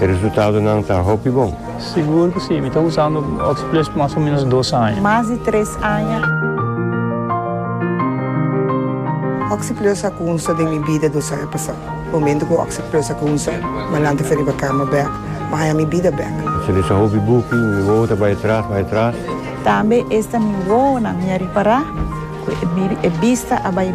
E resultadonan ta hopi bon. Sigur cu si. Mi ta usando Oxyplus mas o menos dos aña. Mas di tres aña. Oxyplus a cunsa den mi bida dos aña pasa. Momento cu Oxyplus a cunsa, Malante fo riba cama bek, ma haña mi bida bek. Esaki ta hopi buki, mi wowo ta bay atras, bay atras. Tambe esta mi wowonan mi a ripara cu e bista a bay.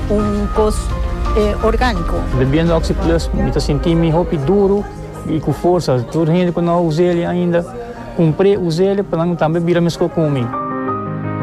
un kos orgániko. Bebiendo Oxi Plus mi ta sinti mi hopi duru i ku forsa. Tur hende ku no a usa el ainda, kumpr'é, usa el pa nan tambe bira meskos ku mi.